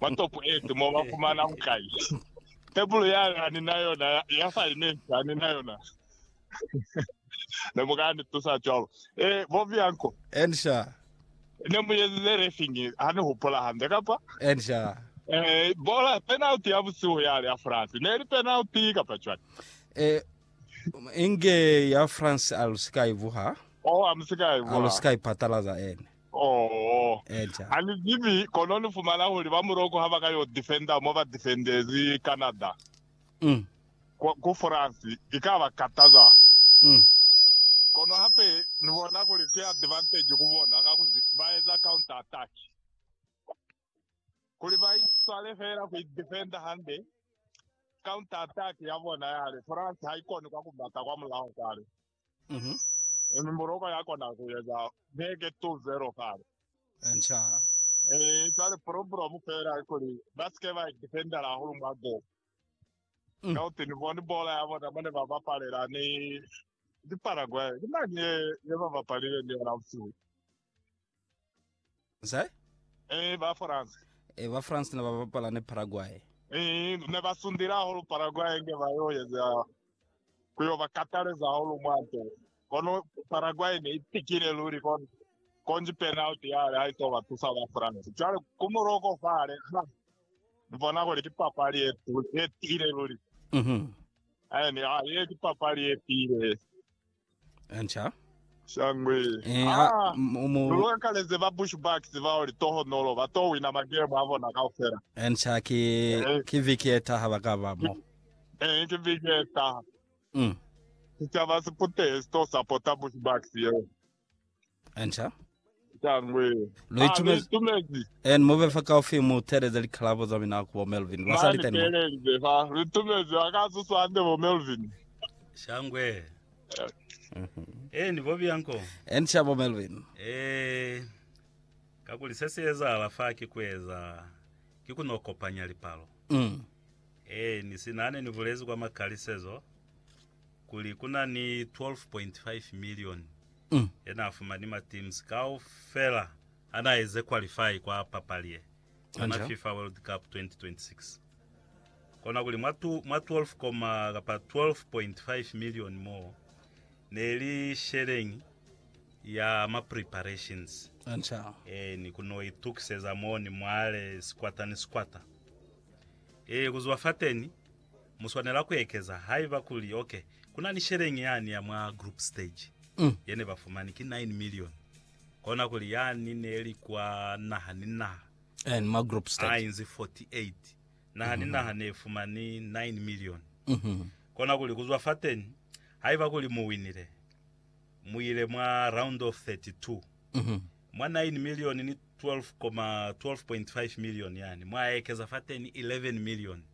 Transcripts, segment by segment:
Mwa topo eetu mo ba fumana bukai? Tebulo ya ka ni na yona ya assignment ha ni na yona. Ne mu ka ni tusa cwalo? Ee, bo Bianco. Encia. Ne mu ezize refing, ha ni hupula hande, kapa? Encia. Ee, bola, penalty ya busihu yale ya France. Ne li penalty, kapa cwani? Ee, inge ya France a lu si ka i vuha. Oh, a mu si ka i vuha. A lu si ka i patalaza, ene. Oho. Eeca. A ni zibi, kono ni fumana kuli ba muloko ha ba ka yo defender mo ba defendezi Canada, Mm. ku, ku France, i ka ba kataza. Mm. Kono hape ni bona kuli ki advantage ku bona, kakuzi ba eza counter attack. kuli ba iswale feela ku idefenda hande. Counter attack ya bona yale France ha ikoni kwa ku bata kwa mulaho kale. Mhm. Mm Morocco ya kona ku eza beke 2-0 kale. Encha. Eh, jwale problem feela kuli ba sike ba idefendela hahulu mwa goal. Mm. Ka uti ni bone bola ya bona mane ba bapalela ni di Paraguay. Ke mani ye ye ba bapalile ni yona usiku. Nse? Eh, ba France. Eh, ba France ne ba bapala ne Paraguay. Eh, ne ba sundile hahulu Paraguay nge ba yo yeza ku yo ba kataleza hahulu mwanto. Kono Paraguay ne itikile luli kono konji penalty yale ha ito ba tusa ba France. Cwale ku Morocco fale, ha, ni bona kuli ki papali e, e tiile luli. Mhm. Mm eh, ni, ha, ye ki papali e tiile. Nca. Shangwe. Eh, ha, Ah, mu- mu- Lulwakaleze ba Bushbucks bao litohonolo ba to wina magemu a bona kaufela. Nca ki, Eh. ki viki eta ha ba ka ba mo. Eh, ke viki e taha. Mm. Sicaba si putehe si to sapota Bushbucks yeo. Enta. Tangwe. Lo itumezi. Itumezi. En move fa ka ofi mu teleza likalabo za mina ku bo Melvin. Ba sa li tani. Pelelize fa. Itumezi wa ka susa ande bo Melvin. Shangwe. Eh ni bobi yanko. En cha bo Melvin. Eh. Ka kuli se se eza ala fa ki kueza ki kuno kopanya lipalo. Mm. Eh ni sinane ni bulezi kwa makalisezo. kuli ku na ni 12.5 milioni ye n'a fumani mateams kaufela ha n'a eze qualify kwa papali ye ya ma FIFA World Cup 2026. Kona kuli mwa 12 koma kapa 12.5 milioni moo ne li sheleñi ya ma preparations ee ni ku n'o itukiseza moo ni mwale sikwata ni sikwata. Ee, ku zuba fateni Mu swanela ku ekeza haiba kuli, ok, ku na ni sheleñi yani ya mwa group stage ye ne ba fumani, ki nine milioni, kona kuli yani ne li kwa naha ni naha, En, mwa group a stage. inzi 48, naha ni naha ne fumani nine milioni. Kona kuli ku zwa fateñi, haiba kuli mu winile, mu ile mwa round of 32, mwa nine milioni ni 12 koma 12.5 milioni yani, mwa ekeza fateñi 11 milioni.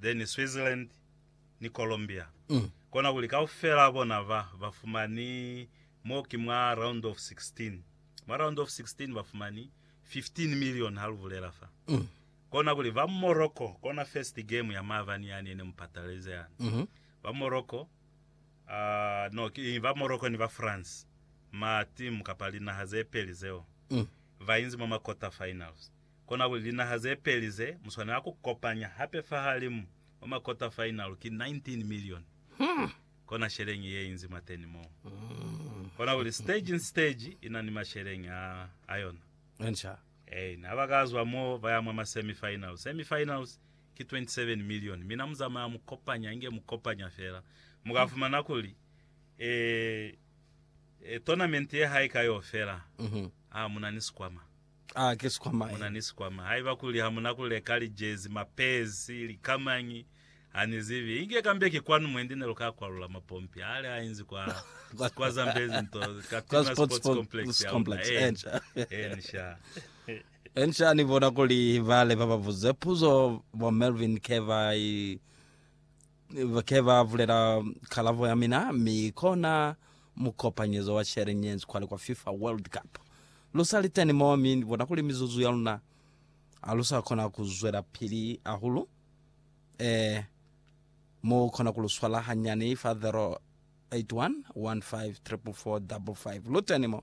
then Switzerland ni Colombia. Kona kuli kaufela bona ba, ba fumani, mo ki mwa round of 16. Mwa round of 16 ba fumani 15 million ha lu bulela fa. Kona kuli ba Morocco, kona first game ya maabani yani yene mu patalize yani. Ba Morocco, ah, no, ki, ba Morocco ni ba France, ma team kapa linaha ze peli zeo, ba inzi mwa ma quarter finals. Konakuli linaha zepeli ze muswanela kukopanya hape fahalimu mwa makota fainalu ki 19 milioni. Kona sheleñi yeinzi mwateni mo. Konakuli stage ni stage ina ni masheleñi a ayona. Enca. Ain. Habakazwa mo baya mwa ma semi finals. Semi finals ki 27 milioni. Mina muzamaya mukopanya inge mukopanya fela. Mukafumana kuli e, e tournament ye haika yo fela, a muna ni sikwama. Aa, ki sikwama ye. Muna ni sikwama. Haiba kuli hamuna kuleka lijezi, mapezi, likamañi, hanizibi. Inge kambe ki kwanu mwendi neluka kwalula mapompi aale hainzi kwa kwa Zambezi nto, Katima Sports Complex ya luna. Eeni. Eeni sha. Eeni sha, ni bona kuli bale bababuze puzo bo Melvin ke ba i Ke ba bulela kalabo ya mina, mi kona mukopanyezo wa Sharing Hands kwale kwa FIFA World Cup. Lu sa li teni mo, mi ni bona kuli mizuzu ya luna ha lu sa kona ku zwelapili hahulu. Eh, mu kona ku lu swala hanyani fa 081 15 455. Lu teni mo.